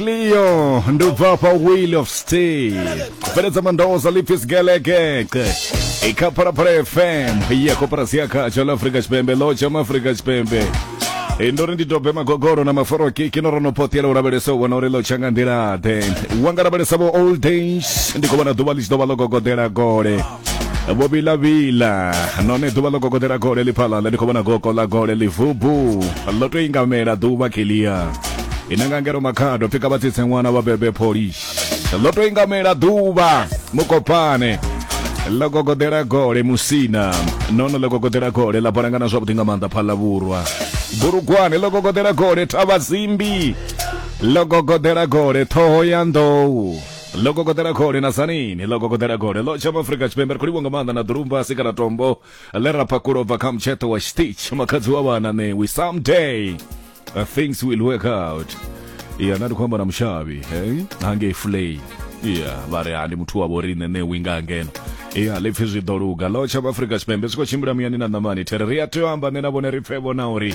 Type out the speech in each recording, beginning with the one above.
Cleo ndi u bva fha Wheel of Steel bveledza mandoza Lipis Gelekeqe i kha Phalaphala FM ya koporasi ya khatsho ḽa Afrika Tshipembe ḽo tsha Afrika Tshipembe Eh, ndo ri ndi dobe magogoro na maforoki kino ro no potela u lavhelesa u vhona uri ḽo tsha nga nḓila-ḓe wa nga lavhelesa vho old days ndi khou vhona ḓuvha ḽi tshi ḓo vha ḽo gogodela gole vho vilavila none ḓuvha ḽo gogodela gole ḽi phala ḽa ndi khou vhona gogo ḽa gole ḽi vubu ḽo to ingamela ḓuvha kilia ina nga ngero makhado pfika vha tsitse ṅwana vha bebe polish ḽo to ingamela ḓuvha mukopane ḽo gogodela gole musina nono ḽo gogodela gole ḽa balangana zwavhuḓi nga maanḓa phala vhurwa bulugwane ḽo gogodela gole thavha zimbi ḽo gogodela gole ṱhoho ya nḓou ḽo kokoḓela khole na sanini ḽo kokoḓela khole ḽo tsha maafurika tshipembe ri khou livho nga maanḓa na ḓulumba a si kana tombo ḽe ra phakhula u bva kha mutsheṱo wa stitch makhadzi wa vhana ṋewi someday uh, things will work out ya na ndi khou amba na mushavhi hangei fulei ya vha ri ha ndi muthu wa vhoriṋe ṋewi nga ngeno ya ḽipfi zwi ḓo luga ḽo tsha maafurika tshipembe zwi khou tshimbila muyani na ṋamani there ri a tea u amba nṋe na vhone ri pfe vhona uri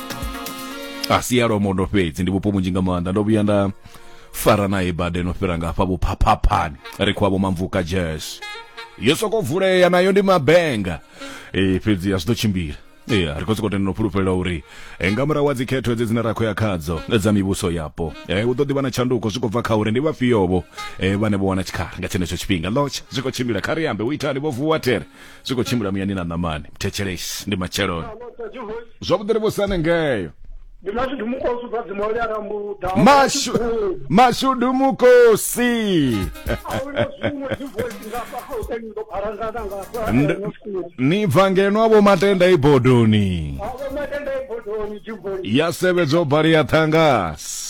a si ya lwamondo fhedzi ndi vhupo vhunzhi nga maanḓa ndo vhuya nda fara naye bade no fhira nga hafha vhuphaphaphani ri khou avho mamvuka jazz yo soko vulea nayo ndi mabenga e, fhedzi a zwi ḓo tshimbila ya ri khou sokou tenda no fhulufhelela uri eh, nga murahu wa dzikhetho edzi dzine ra khou ya khadzo eh, dza mivhuso yapo eh, hu ḓo ḓi vha na tshanduko zwi khou bva kha uri ndi vhafhiovho eh, vhane vho wana tshikhala nga tshenetsho tshifhinga lotsha zwi khou tshimbila kha ri ambe u itani vho vuwa tere zwi khou tshimbila muyani na ṋamani mthetshelesi ndi matsheloni zwavhuḓi ri vhusane ngeyo ndi mashudu mukosi ubva dzimoli a rambuda mashu mashudu mukosi ni bva ngeno avho matenda ibodoni ya sevhedzo bali ya ṱhangasi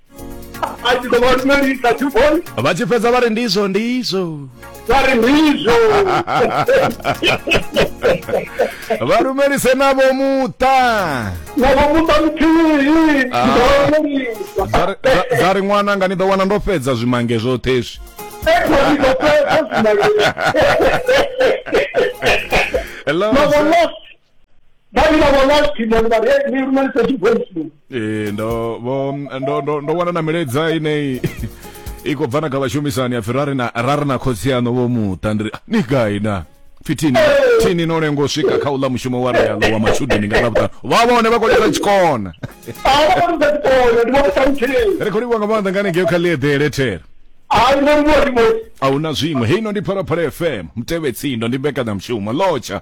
vha tshi fhedza vha ri ndizwo ndizwo vha ri ndizwo vha rumelise navho muṱa navho muṱa muthihi dza ri ṅwana nga ni ḓo wana ndo fhedza zwimange zwoṱhe zwi Hello. vha ni vha vhona khwine ri vha ri ni lumelisa tshi voice note ee ndo vho ndo ndo ndo wana na milaedza ineyi i khou bva na kha vhashumisani ya pfi ra ri na ra ri na khotsi yaṋo vho muṱa ndi ri "Ah, ni gai na pfi thini thini no lenga u swika kha uḽa mushumo wa realo wa matshudeni nga ḽavhuṱanu vha vhone vha khou lisa tshikona a vha vha ni sa tshikona ndi vha vha ṱalutsheni ri khou livhuwa nga maanḓa nga hanengeo kha ḽieḓele thera a ni vhoni vho ri moti a hu na zwiṅwe heino ndi phalaphala fm mutevhetsindo ndi mbekanyamushumo lotsha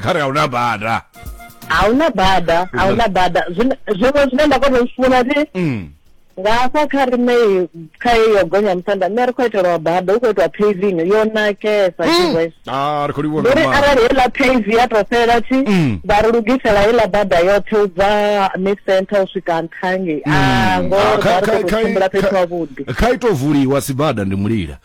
kha ri a huna bada a huna bada a huna bada zwiṅwe zwine nda kona u zwi funa ti mm. nga hafha kha rine kha iyo gonya musanda nṋe ri khou itelwa bada hu khou itiwa paving yo nakesa mm. ah, uri arali heiḽa pave ya tou fhela thi mm. vha ri lugisela heiḽa bada yoṱhe u bva mid center u swika nṱhangi a ah, ngoa ah, ri khou tshimbila fhethu havhuḓi kha ito vuliwa sibada ndi mulila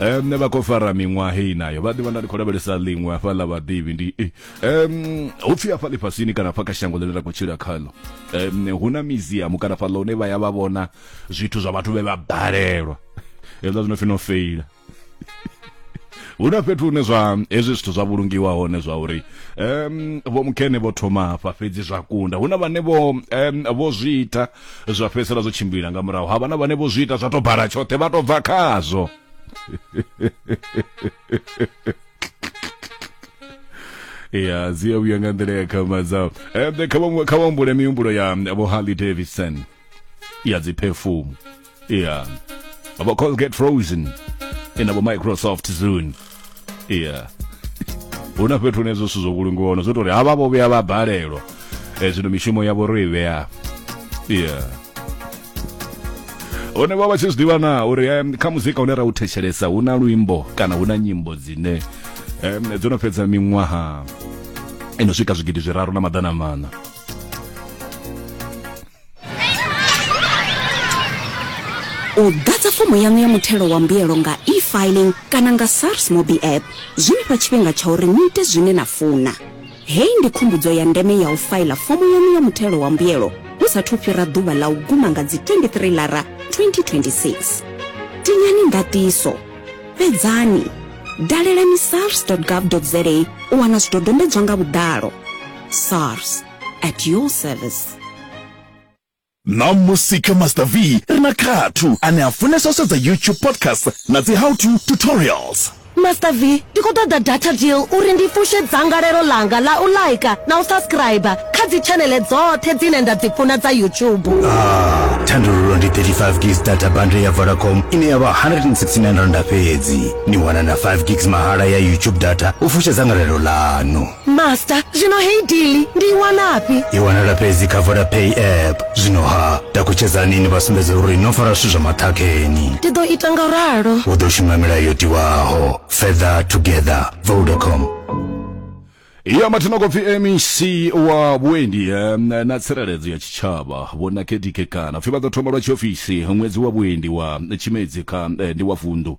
um vha khou fara miṅwaha heyi nayo vha ḓivha nda ndi khou lavhelesa ḽiṅwe hafha ḽa vhaḓivhi ndi um hu pfhi hafha ḽifhasini kana hafha kha shango ḽine ra khou tshila khaḽo um hu na miziamu kana fhaḽa hune vha ya vha vhona zwithu zwa vhathu vhe vha balelwa hezwiḽa zwi no pfi no feila hu na fhethu hune zwa hezwi zwithu zwa vhulungiwa hone zwa uri um vho mukene vho thoma hafha fhedzi zwa kunda hu na vhane vho um vho zwi ita Zwa fhedzisela zwo tshimbila nga murahu havha na vhane vho zwi ita zwa to bala tshoṱhe vha to bva khazwo ya dzi a vhuya nga nḓila ya khama dzao ende kha vha humbule mihumbulo ya vho harley davidson ya dziphefumu yeah abo Colgate Frozen inabo Microsoft Zune yeah huna fhethu hune zwo zwo vhulungiwa hone zwo tori havha vho vhuya vha balelwa eh, zwino mishumo yavho ro i vhea yeah hone vha vha tshi zwiḓivha na uri um, kha muzika une ra u thetshelesa hu na luimbo kana hu na nyimbo dzine um, dzo no fhedza miṅwaha ino swika zwigidi zwiraru na maḓana mana u ḓadza fomo yaṋu ya muthelo wa mbuyelo nga e-filing kana nga sars mobi app zwi ni fha tshifhinga tsha uri ni ite zwine na funa hei ndi khumbudzo ya ndeme ya u faila fomo yaṋu ya muthelo wa mbuyelo hu sathu fhira ḓuvha ḽa u guma nga dzi 23 lara 2026 tinyani ndatiso fhedzani dalelani sars gov za u wana zwidodombedzwa nga vhuḓalo sars at your service ṋamusi kha master v ri na khathu ane a funesa u sedza youtube podcast na dzi how to tutorials master v ndi khou ṱoḓa data deal uri ndi fushe dzangalelo langa ḽa u laika na u subscriber kha dzitshanele dzoṱhe dzine nda dzi funa dza youtube ah, thandululo ndi 35 gigs data bundle ya vodacom ine ya vha 169 randa fhedzi ni wana na 5 gigs mahala ya youtube data u fushe dzangalelo ḽanu master zvino hei dili ndiiwanapi iwanala fhedzi kha vodapay app zwino ha takutshedzani ni vha sumbedza uri no fara zwithu zwa maṱhakheni ndi ḓo ita nga ralo u ḓo shuma milayo yo tiwaho fether together vodacom ya mathina kopfi mec wa vhuendi eh, na tsireledzo ya tshitshavha vho nakedike kana pfi vha ḓo thoma lwa tshiofisi ṅwedzi wa vhuendi wa tshimedzi kha eh, ndi wa vundu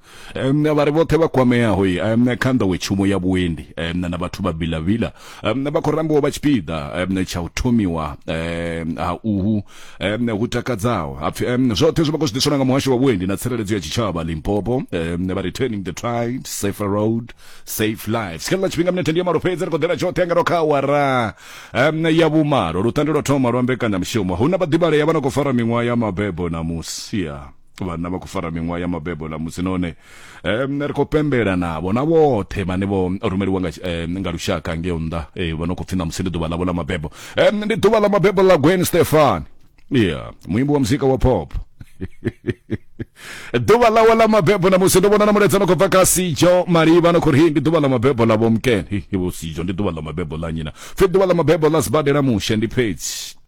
um, vha ri vhoṱhe vha kwameaho um, kha nḓowetshumo ya vhuendi um, na vhathu vha bilavila um, vha khou rambiwa vha tshipiḓa um, tsha u thomiwa um, ha uhu um, hu takadzaho hapfi um, zwoṱhe zwi vha khou zwi ḓiswa nga muhasho wa vhuendi na tsireledzo ya tshitshavha limpopo um, vha returning the tribes safer road safe lives kha ḽa tshifhinga minethe ndi ya malo fhedzi ri khou ḓela tshoṱhe nga kha awara um, ya vhumalo lutande lwa thoma lwa mbekanyamushumo hu na vhaḓivhalea vha no khou fara miṅwaha ya mabebo na musia vhanna vha khou fara miṅwaha ya mabebo ḽa musi none um ri khou pembela navho na vhoṱhe vhane vho rumeliwa nga, um, nga lushaka ngeo nnḓa eh, vho no khou pfhi na musi ndi ḓuvha ḽavho ḽa mabebo um ndi ḓuvha ḽa mabebo ḽa gwen stefan yeah muimbi wa muzika wa pop ḓuvha ḽawe ḽa mabebo na musi ndo vhona na mulaedza no khou bva kha sijo malivha no khou ri ndi ḓuvha ḽa mabebo ḽa vhomken vho sijo ndi ḓuvha ḽa mabebo ḽa nyina pfhi ḓuvha ḽa mabebo ḽa sibadela mushe ndi fhedzi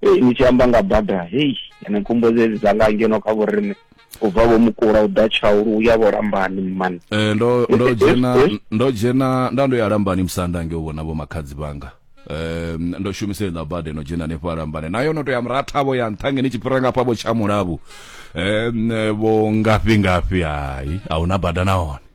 hei ni tshi amba nga bada hei ene khumbo dzedzi dza nga ngeno kha vhorine u bva vho mukula u ḓa tshaulu u ya vho lambani mmani eh, ndo ndo eh, eh, dzhena eh. ndo dzhena nda ndo ya lambani musanda nge u vhona vho makhadzi vhanga eh, ndo shumisa iḽa bada no dzhena hanefho alambane nayo no to ya murathavho ya nṱha ngeni tshi fhira ngafha vho tsha mulavhu eh, vho ngafhi ngafhi hai a huna bada nahone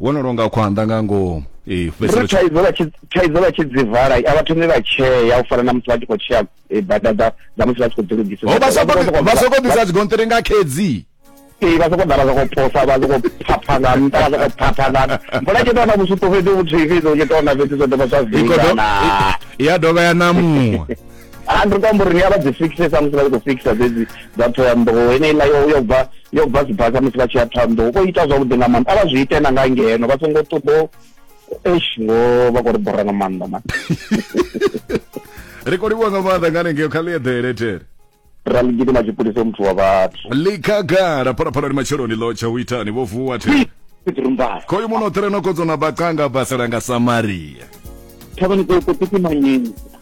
wo no longa khwanḓa nga ngomu ee fhedziselo thaidzo vha tshi thaidzo vha tshi dzi vala a vha thomi vha tshea u fana na musi vha tshi khou tshea eh, bada dza dza musi vha tshi khou dzi lugisa ho vha soko vha soko ḓisa dzigonṱiri nga khedzi ee vha soko ḓala soko posa vha soko phapha nga nṱha vha soko phapha nga mbola tshi tona vhusupo fhedzi vhuthihi fhedzi u tshi tona fhedzi zwo dovha zwa vingana ya dovha ya namuwa ha ndi khou amba uri ni a vha dzi fixe samusi vha tshi khou fixa dzedzi dza thohoyanḓou heneiḽa yo yo bva yo bva sibasa musi vha tshi ya thohoyanḓou vho ita zwavhuḓi nga maanḓa a vha zwi ite na nga ngeno vha songo ṱoḓo eish ngo vha khou ri bora nga maanḓa man ri khou livhuwa nga maanḓa nga hanengeo kha ḽieḓele tere ra ḽi gidima tshipulisa muthu wa vhathu ḽikhagala phalaphalani matsheloni ḽo tsha u itani vho vuwa tere tsirumbala khoyu muno ṱreno kodzo na bacanga basalanga samaria thavhani ṱokoṱiki manyeni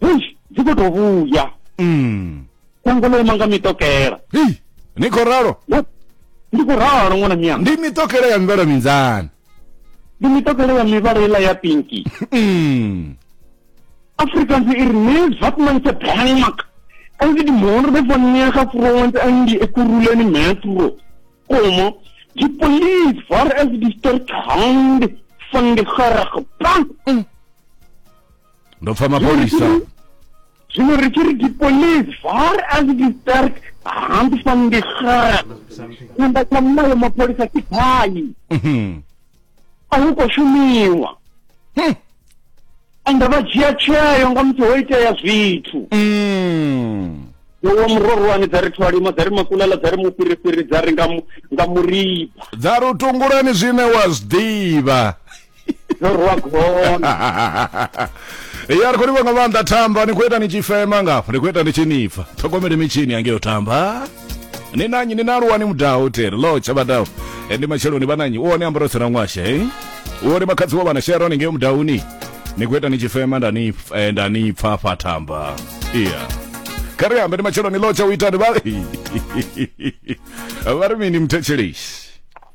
hei dzi khou tou vhuya Mm. shango ḽo ima nga mitokela Hei, ni khou ralo Wo- ndi khou ralo ṅwana miyanga ndi mitokele ya mivhala minzani ndi mitokela ya mivhala iḽa ya pinki Mm. Afrikaans ir neus wat man se bang maak. As die moorde van nege vrouwen in die ekuruleni metro komen, die police waar is die sterk hand van die gerige bank. ndo pfa mapholisa zwino ri tshi ri di police var as it is dark hand van die graan tshanḓa tsha mulayo mapholisa ke phani mhm. a hu khou shumiwa hmm. ende vha dzhia tsheo nga musi ho itea zwithu hmm. yowa murorwani dza ri thwalima dza ri makulala dza ri mufhirifhiri dza ri nga muriba dza ri u tungulani zwine wa zwi ḓivha no rwa gona ya ri khou livha nga maanḓa thamba ni khou ita ni tshi fema ngafho ni khou ita ni tshi nipfa ṱhogomele mitshini yangeyo thamba ni nanyi ni naluwa ni mudaho tere lo tshabadaho e, ndi matsheloni vhananyi u one ambaro tsena ṅwasha e u one makhadzi wo vhana shero ni ngeyo mudahuni ni khou ita ni tshi fema nda ni eh, nda ni pfa fa thamba iya kha ri ambe ndi matsheloni lo tsha u itani vha vha ri mini mthetsheleshi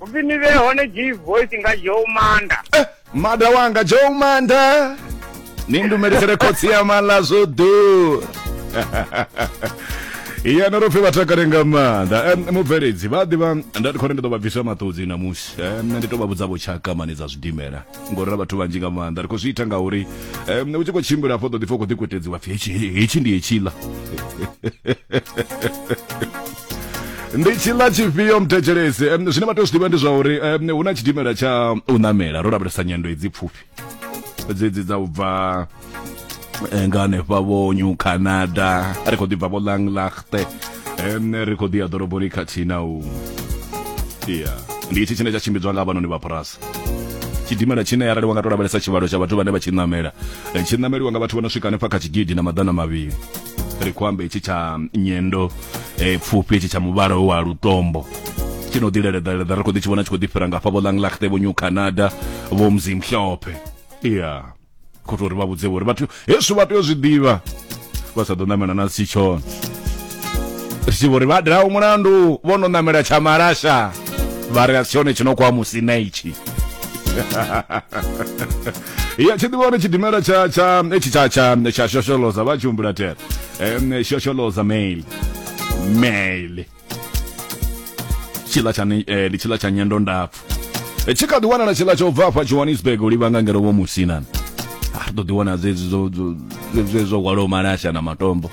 upfi ni vhe hone g voice nga joe manda eh, mada wanga joe manda ni ndumelekele khotsi ya mala zwo ḓura iya no ro pfi vha takale nga maanḓa Em, mubveledzi vha ḓivha nda ndi khou ri ndi ḓo vha bvisa maṱudzi namusi Em, nṋe ndi tou vha vhudza vho tshaka mane dza zwidimela ngori ra vhathu vhanzhi nga maanḓa ri khou zwi ita ngauri um u tshi khou tshimbila afho ḓo ḓi fa u khou ḓikwetedziwa pfi hetshi ndi hetshila ndi tshila tshifhio mthetshelesi um zwine vha tea u zwi ḓivha ndi zwa uri um hu na tshidimela tsha u ṋamela ro lavhelesa nyendo edzi pfufhi dzedzi dza u bva eh, nga hanefha vho new canada ri khou ḓibva vho langlachte ene ri khou ḓi ya ḓoroboni khathihi na u ya ndi itshi tshine tsha tshimbidzwa nga vhanoni vha phurasi tshidimela tshine arali wa nga to lavhelesa tshivhalo tsha vhathu vhane vha tshi namela eh, tshi nameliwa nga vhathu vho no swika hanefha kha tshigidi na maḓana mavhili ri khou amba itshi tsha nyendo eh, pfufhi itshi tsha muvhala wa lutombo tshi no ḓileleḓaleḓa ri khou ḓi tshi vhona tshi khou ḓi fhira ngafha vho langlachte vho new canada vho mzimhlophe ya yeah. khou tou ri vha vhudze vho uri vhathu hezwi vha tea u zwi ḓivha vha sa ḓo ṋamela na si tshone ri tshi vho ri vha diraho mulandu vho no ṋamela tsha malasha vha ri a si tshone tshi no kwa musi na itshi ya tshi ḓivha uri tshidimela tsha tsha etshi tsha tsha tsha shosholoza vha tshi humbula tere shosholoza mail mail tshila tsha ni- eh, ndi tshila tsha nyendo ndapfu Eh, tshi kha ḓi wanala tshila tsha u bva afha johannesburg u livhanga ngeno vho musinani a ri ḓo ḓi wana dzedzi zwo- zwo- zwe- zwe zwo hwalaho malasha na matombo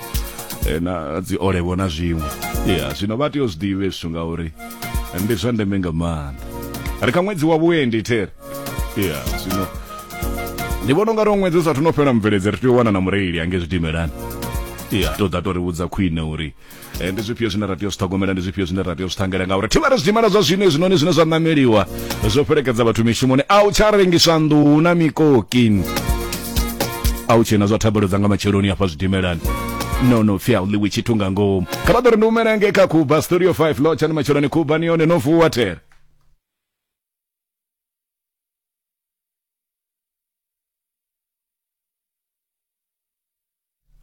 eh, na dzi olevo na zwiṅwe ya zwino vha tea u zwi ḓivhe zwithu ngauri ndi zwa ndeme nga maanḓa ri kha ṅwedzi wa vhuendi there ya zwino ndi vhona unga ri ṅwedzi u sathu no fhela mubveledzi ri tea u wana na mureili ange zwidimelani ya to ḓa to ri vhudza khwine uri Eh, ndi zwifhio zwine ra tea u zwi ṱhogomela ndi zwifhio zwine ra tea u zwi ṱhangela ngauri thivhara zwidimela zwa zwino hezwinoni zwine zwa ṋameliwa zwo fhelekedza vhathu mishumoni a u tsha rengiswa nḓuhu na mikoki a u tshena zwa thabelo dza nga matsheloni hafha zwidimelani no no fia u ḽiwi tshithu nga ngomu kha vha ḓo ri ndi humela nge kha kuba studio 5 lotshani matsheloni kuba ni yone no vuwa tere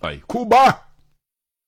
ai kuba